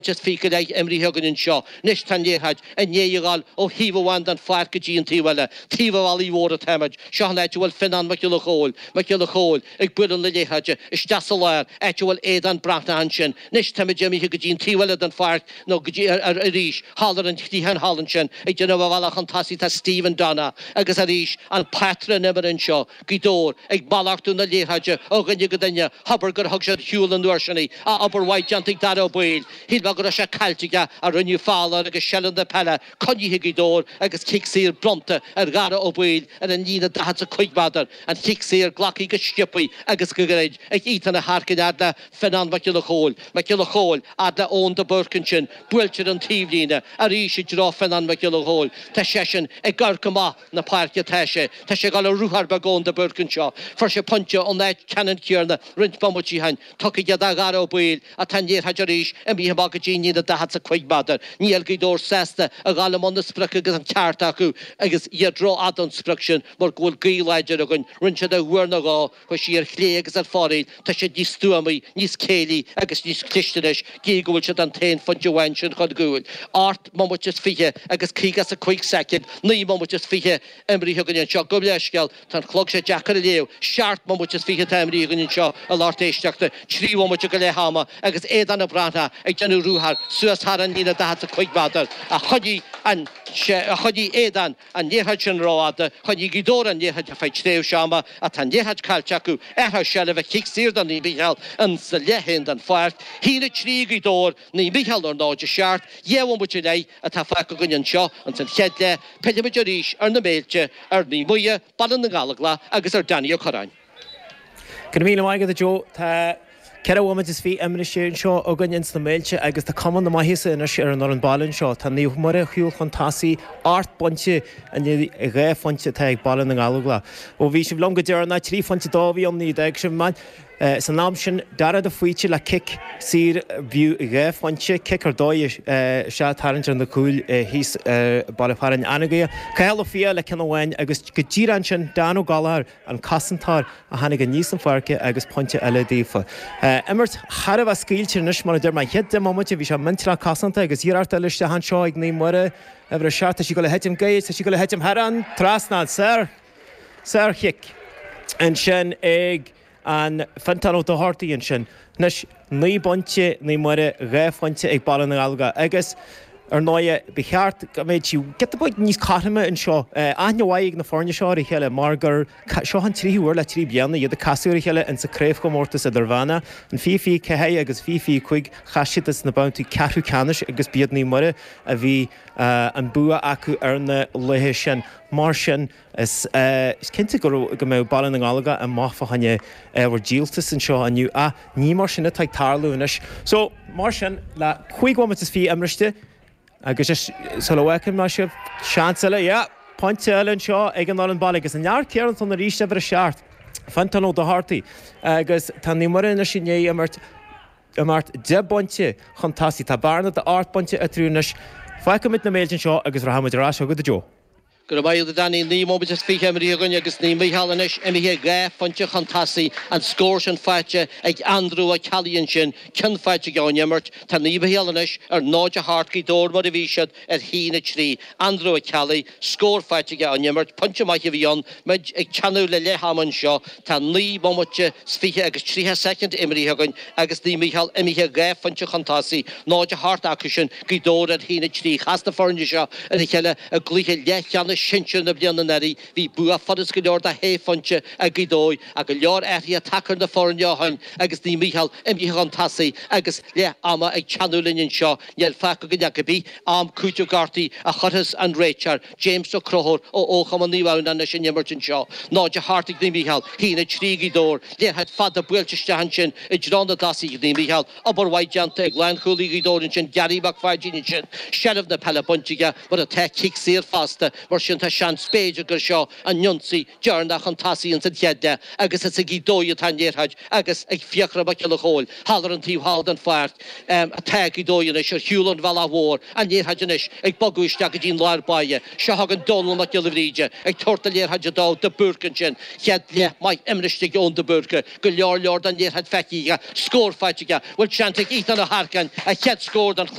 Just fiche go leith imrithe againn anseo anois, tá an liathróid i ndiaidh a dhul ó thaobh amháin den pháirc go dtí an taobh eile, taobh an bhealaigh mhóir atáimid. Seo an áit a bhfuil Fionán Mac Giolla Chomhaill, Mac Giolla Chomhaill, ag bualadh na liathróide isteach sa lár, áit a bhfuil Aodán Breathnach ansin. Anois táimid imithe go dtí an taobh eile den pháirc, nó go dtí, arís, thall ar an chliathán thall ansin. Ag déanamh a bhealach chun tosaigh tá Stephen Donna agus, arís, an pátrún imeartha anseo. Gaoth Dobhair, ag malartú na liathróide ó dhuine go duine, hóbair gur thug siad ar shiúl an uair sin í, a obair mhaith déanta ag Darragh Ó Baoill. Shíl mé go raibh sé caillte aige, ach rinneadh feall air agus seilbh na peile, coinnithe ag Gaoth Dobhair agus cic saor bronnta ar Dharragh Ó Baoill ar an líne 45 méadar, an cic saor glactha go sciobtha agus go gairid ag Ethan Harkin fhad le Fionán Mac Giolla Chóill. Mac Giolla Chóill, fhad le Eoin de Búrca ansin, buailte ar an taobhlíne arís i dtreo Fionán Mac Giolla Chóill, tá seisean ag amharc amach, na páirce atá sé. Tá sé ag dul ar ruathar beag Eoin de Búrca anseo. Fuair sé pointe ón áit ceannann céarna roinnt bomaití ó shin. Tugtha aige do Dhara Ó Baoill atá an liathróid arís imithe amach go dtí an líne daichead 's a cúig méadar. Níl Gaoth Dobhair sásta a dhul i mbun na sprioc agus an ceart acu agus iad rófhada ón sprioc sin mar go bhfuil gaoth láidir againn. Rinn siad é uair nó dhó. Chuaigh sí ar chlé agus ar fóraoil, tá siad níos stuamaí, níos céillí agus níos cliste anois, gidh go bhfuil siad an t-aon phointe amháin sin chun cúil. Ocht mbomaite is fiche agus caoga is a cúig soicind, naoi mbomaite is fiche imrithe againn anseo, gabh leithscéal, tá an clog seo deacair a léamh, seacht mbomaite is fiche atá imrithe againn anseo a lucht éisteachta, trí bhomaite go leath ama agus Aodán Breathnach ag déanamh ruathar suas thar an líne daichead is a cúig méadar, ach choinnigh an, sé, a choinnigh Aodán. an liathróid sin rófhada, choinnigh Gaoth Dobhair an liathróid ar feadh tréimhse ama ach tá an liathróid caillte acu, athrú seilbhe, cic saor do Naomh Micheál ins an leath féin den pháirc, sin 3 Gaoth Dobhair, Naomh Micheál ar ndóigh, is seacht, dhá bhomaite go leith atá fágtha againn anseo ins an chéad leath, pillfimid arís ar na Méilte, ar Naomh Muire, Baile na nGallóglach agus ar Danny Ó Corráin. Go raibh míle maith agat a Joe. Tá ceithre bhomaite is fiche imrithe anseo againn ins na Méilte agus tá cuma na maitheasa anois ar an fhoireann baile anseo. Tá Naomh Muire ar shiúl chun tosaigh ocht bpointe in aghaidh dhá phointe atá ag Baile na nGallóglach. Ó bhí sibh liom go deireanach trí phointe dó a bhí ann nuair a d'fhág sibh mé. San am sin Dara de Faoite le cic saor ab fhiú dhá phointe. Cic ar dóigh is é ag tarraingt ar na cúil thíos ar Baile Fearainn Anagaire. Cathal Ó Fiaich le ceann amháin agus go díreach ansin Dan Ó Gallagher, an cosantóir a tháinig aníos an pháirc agus pointe eile daofa. Imirt thar a bheith scaoilte anois mar a deir mé. An chéad deich mbomaite bhí sé millteanach cosantach agus iarracht eile isteach anseo ag Naomh Muire, uimhir a seacht, tá sí ag gabháil a thitim gairid, tá sí ag gabháil a thitim thar an trasnán. Sárchic ansin ag an Fintán Ó Dochartaigh ansin. Anois. Naoi bpointe, Naomh Muire, dhá phointe ag Baile na nGallóglach agus, ar ndóighe, ba cheart go mbeidh sí giota beag níos cothroime anseo. Aithne mhaith ag na foirne seo ar a chéile mar gur seo an tríú huair le trí bliana iad ag casadh ar a chéile insa Craobhchomórtas Idirmheánach. In fiche fiche ceathair agus fiche fiche cúig chas siad ins na babhtaí ceathrú ceannais agus b'iad Naomh Muire a bhí an bua acu ar na laethe sin. Mar sin, Is cinnte go mbeidh Baile na nGallóglach amach fá choinne ábhar díoltais anseo inniu ach ní mar sin atá ag tarlú anois. So, mar sin, le cúig bhomaite is fiche imriste agus is sula bhfágfaidh mé sibh, seans eile, yeah! pointe eile anseo ag an fhoireann baile agus an fear céanna ansin arís, uimhir a seacht, Fintan Ó Dochartaigh agus tá Naomh Muire anois i ndiaidh imirt, imirt deich bpointe chun tosaigh. Tá bearna d'ocht bpointe eatarthu anois. Fágfaimid na Mills anseo agus rachaidh muid ar ais chuig Gaoth Dobhair. Go raibh maith agat Danny naoi mbomaite is fiche imrithe againn agus Naomh Mícheál anois imithe dhá phointe chun tosaigh, an scór sin faighte ag Andrew Ó Ceallaigh ansin ceann faighte aige ón imirt. Tá Naomh Mícheál anois ar náid a hocht Gaoth Dobhair mar a bhí siad ar a haon a trí. Andrew Ó Ceallaigh, scór faighte aige ón imirt, pointe maith a bhí ann, muid ag teannadh le leath ama anseo. Tá naoi mbomaite 's fiche agus triocha soicind imrithe againn agus Naomh Mícheál imithe dhá phointe chun tosaigh, 0-8 acu sin, Gaoth Dobhair ar 1-3. Chas na foirne seo ar a chéile i gcluiche leathcheannais sinsir na bliana anuraidh. Bhí bua furast go leor de shé phointe ag Gaoth Dobhair ach go leor athruithe tagtha ar na foirne ó shin agus Naomh Mícheál imithe chun tosaigh agus leath ama ag teannadh linn anseo, níl fágtha againn ach cá bith am cúitimh gortaithe a chuirfeas an réiteoir. James Ó Conchúir ó Fhochumann Naomh Adhamhnáin leis an imirt anseo, 0-8 ag Naomh Mícheál, 1-3 Gaoth Dobhair liathróid fada buailte isteach ansin i dtreo na dtosaithe ag Naomh Mícheál, obair mhaith déanta ag lánchúlaí Ghaoth Dobhair ansin Gary Mac Pháidín ansin, seilbh na peile bainte aige mar atá, cic saor fosta mar sin tá seans b'fhéidir gur seo an ionsaí deireanach chun tosaigh ins an chéad leath agus is ag Gaoth Dobhair atá an liathróid agus ag Fiachra Mac Giolla Chomhaill thall ar an taobh thall den pháirc atá Gaoth Dobhair anois ar thaobh an bhealaigh mhóir an liathróid anois ag bogadh isteach go dtí an lár báire seo chugainn Dónall Mac Giolla Bhríde ag tabhairt na liathróide d'Eoin de Búrca ansin chéad leath maith imriste ag Eoin de Búrca go leor leor den liathróid feicthe aige scór faighte aige bhfuil seans ag Ethan Ó hEarcáin a chéad scór den